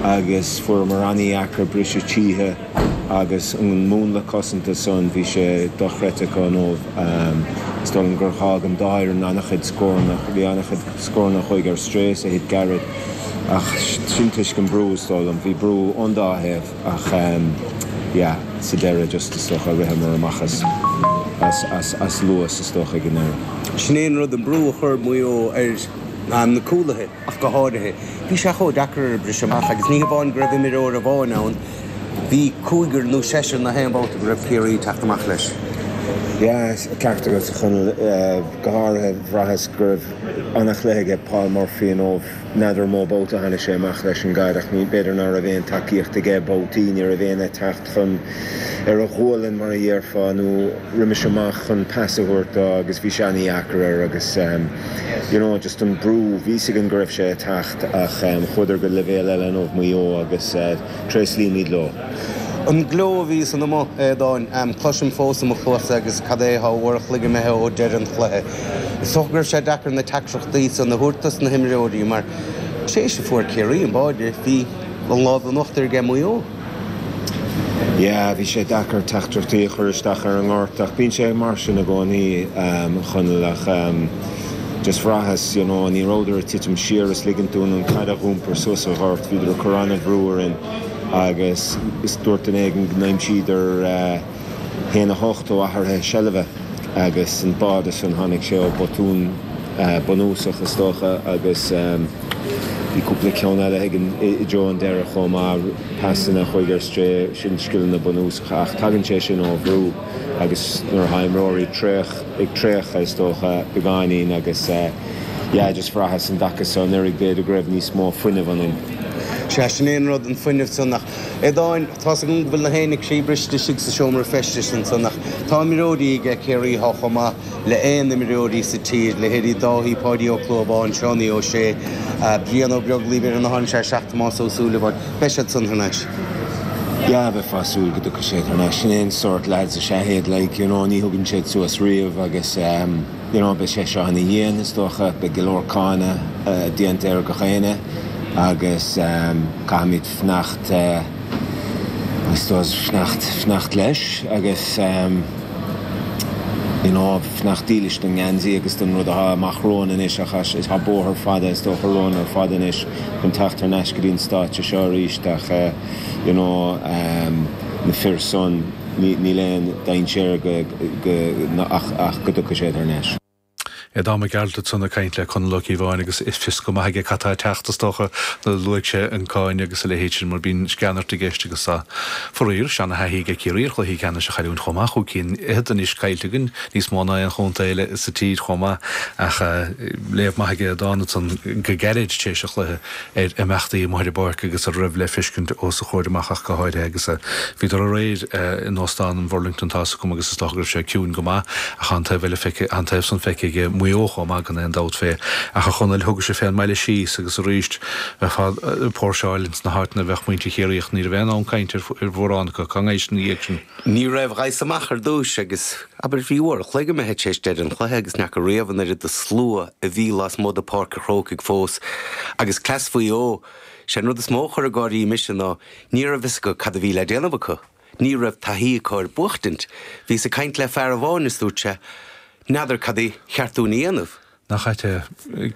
agus fuaireamar an-dheacair briseadh tríthi agus an múnla cosanta san, bhí sé dochreidte acu inniu. Is dóigh liom gur dh'fhág an dá fhoireann an-chuid scóranna, bhí an-chuid scóranna a chuaigh ar strae is a thit gairid ach sin toisc an brú is dóigh liom, bhí brú ón dá thaobh ach yeah sa deireadh just is dócha ritheamar amach as as as luas is dócha ag an deireadh. Sin é an rud an brú a chuir Maigh Eo ar na cúlaithe. ach go háirithe. Bhí sé chomh deacair briseadh amach agus ní hamháin go raibh imreoir amháin ann, bhí cúigear nó seisear gach aon babhta go raibh Ciarraí ag teacht amach leis. Ceart agat, a Chonaill. Go háirithe, bhraitheas go raibh an-chluiche aige Paul Murphy inniu. N'fheadar mó babhta a tháinig sé amach leis an gcaid ach b'fhéidir ná raibh aon tacaíocht aige. Babhtaí ní raibh éinne ag teacht. chun, ar a ghualainn mar a dhéarfá, nó roimis amach chun pas a thabhairt dó agus bhí sé an-deacair air agus you know just an brú, bhí's againn go raibh sé ag teacht ach chuadar go leibhéal eile inniu Maigh Eo agus tréaslaímid leo. An gleo a bhíos ina mboth, a Aodáin, cloisim fós i mo chluasa agus cad é atá uair a chloig imithe ó deireadh an chluiche. Is dócha go raibh sé deacair na teachtaireachtaí san a thabhairt dos na himreoirí mar tar éis a fuair Ciarraí an báide, bhí an lámh in uachtar aige Maigh Eo. Yeah, bhí sé deacair teachtaireachtaí a chur isteach ar an ngort ach bíonn sé mar sin i gcónaí, um, a Chonaill, ach, um, just bhraitheas, you know, ní rabhadar ag titim siar is ligint dúinn an caid a dh'iompar suas sa ghort, bhíodar ag cur an-bhrú orainn agus is dúirt duine éigin go n-aimsíodar, eh, haon a hocht ó athruithe seilbhe agus an báide san tháinig sé ó botún bunúsach is dócha agus bhí cúpla ceann eile againn i dtreo an deireadh chomh maith pasanna a chuaigh ar strae sin scileanna bunúsacha ach tagann sé sin ó bhrú agus nuair atá imreoirí traoch ag traochadh is dócha beagáinín agus yeah just bhraitheas an dtaca so anuraidh b'fhéidir go raibh níos mó fuinneamh ionainn. Sea, sin é an rud, an fuinneamh san ach a Aodáin. Tá's agam go bhfuil gach éinne croíbhriste istigh sa seomra feistis ansan ach tá imreoirí aige Ciarraí atá chomh maith le h-aon imreoirí sa tír, leithéidí Dáithí, Páidí Ó Clúmháin, Seánie Ó Sé, Brian Ó Beaglaoí, bhí ar an áireamh sé seach Tomás Ó Súilleabháin. Beidh siad san thar n-ais. Yeah, bheifeá ag súil go dtiocfadh siad thar n-ais. Sin é an sórt leaids is ea iad, like, you know, ní thugann siad suas riamh agus, em, you know, beidh sé seo an-dhian, is dócha, beidh go leor cáineadh, eh, déanta ar gach éinne agus, em, caithfimid. fanacht, I suppose, fanacht, fanacht leis agus you know fanacht dílis don ngeansaí agus don rud atá amach romhainn anois ach tá bóthar fada is dócha romhainn ar fad anois chun teacht thar n-ais go dtí an stáitse seo aríst ach you know na fir san, níl aon dainséar go, go, ach go dtiocfaidh siad thar n-ais. Aodán Mac Gearailt ansan ag caint le Conall Ó Cíobháin agus is fios go maith aige cad tá ag teacht, is dócha, nó luaigh sé an cáin agus a leithéid sin mar bíonn sceanairt i gceist agus tá, faraor, seanathaithí ag Ciarraí ar chluichí ceannais a chailliúint chomh maith, chúig cinn fhichead anois caillte againn, níos mó ná aon chontae eile sa tír chomh maith ach léamh maith aige Aodán ansan go gairid tar éis an chluiche. ar imeachtaí amuigh ar an bpáirc agus a raibh le feiscint os a chomhair amach ach go háirithe agus bhíodar aréir in Óstán an Bhurlington. Tá's agam agus is dócha go raibh sé ciúin go maith ach tá an taobh eile feicthe, tá an taobh san feicthe ag Maigh Eo chomh maith gan aon dabht fé ach a Chonaill thugais-se fén mbaile síos agus arís bheifeá ag póirseáil ins na háiteanna a bheadh muintir Chiarraí ach ní raibh aon fhonn cainte ar mhórán acu cá ngaibhis ina dhiaidh sin. Ní raibh ghaibheas amach ar dtúis agus, abair, bhí uair a chloig imithe tar éis deireadh an chluiche agus n'fheaca riamh an oiread de slua a bhí lasmuigh de Pháirc a' Chrócaigh fós. Agus cleas Mhaigh Eo, sé an rud is mó a chuir ag gáirí mise ná ní raibh fhios acu cad a bhí le déanamh acu. Ní raibh taithí acu ar buachtaint. Bhíos ag caint le fear amháin is dúirt sé, N'fheadar cad ba cheart dúinn a dhéanamh? Nach ait é?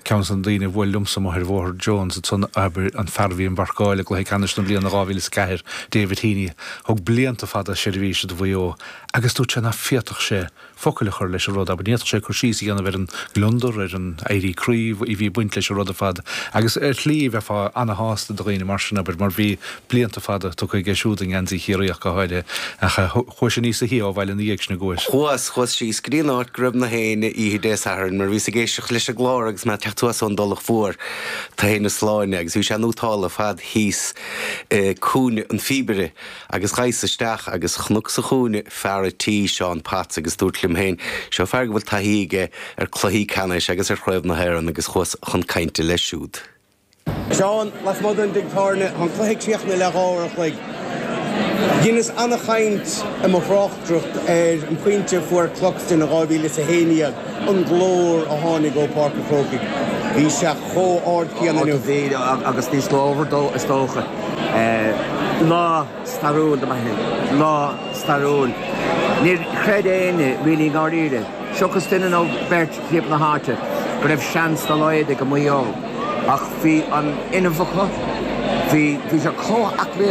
Ceann de na daoine a bhuail liomsa amuigh ar Bhóthar Jones ansan, abair, an fear a bhí im mharcáil i gCluiche Ceannais na bliana 2004, David Heaney, thug blianta fada seirbhíse do Mhaigh Eo agus dúirt sé nach bhféadfadh sé focail a chur leis an rud abair, ní fhéadfadh sé cur síos a dhéanamh ar an ngliondar, ar an éirí croí a bhí ag baint leis an rud ar fad agus ar shlí bheifeá ana-shásta do dhaoine mar sin, abair, mar bhí. blianta fada tugtha aige siúd i ngeansaí Chiarraí ach go háirithe, ach chuais-se níos sia ó bhaile ina dhiaidh sin. Chuas. Chuas, chuas síos go dtí an áit go raibh gach éinne oíche Dé Sathairn mar bhíos ag éisteacht leis an gclár agus mé ag teacht anuas ón dTulach Mhór, Tá hé na Sláine, agus bhí sé in Útála ar fad thíos i gCúinne an Phíobaire agus ghaibheas isteach agus chonac sa chúinne fear a' tí, Seán Potts, agus dúirt liom féin, seo fear go bhfuil taithí aige ar cluichí ceannais agus ar Chraobh na hÉireann agus chuas chun cainte leis siúd. Seán, Lasmuigh den dtigh tábhairne, tá an cluiche críochnaithe le dhá uair an chloig. Dheineas ana-chaint i mo thráchtaireacht ar an phointe a fuair Cluxton in 2011, an glór a tháinig ó Pháirc an Chrócaigh, bhí sé chomh ard céanna inniu. Ard a bhí, agus níos glórmhaire is dócha, lá. stairiúil do Mhaigh Eo, lá stairiúil. Níor chreid éinne really i ndáiríre, seachas duine nó beirt timpeall na háite, go raibh seans dá laghad ag Maigh Eo. Ach bhí an-fhuinneamh acu, bhí sé chomh haclaí.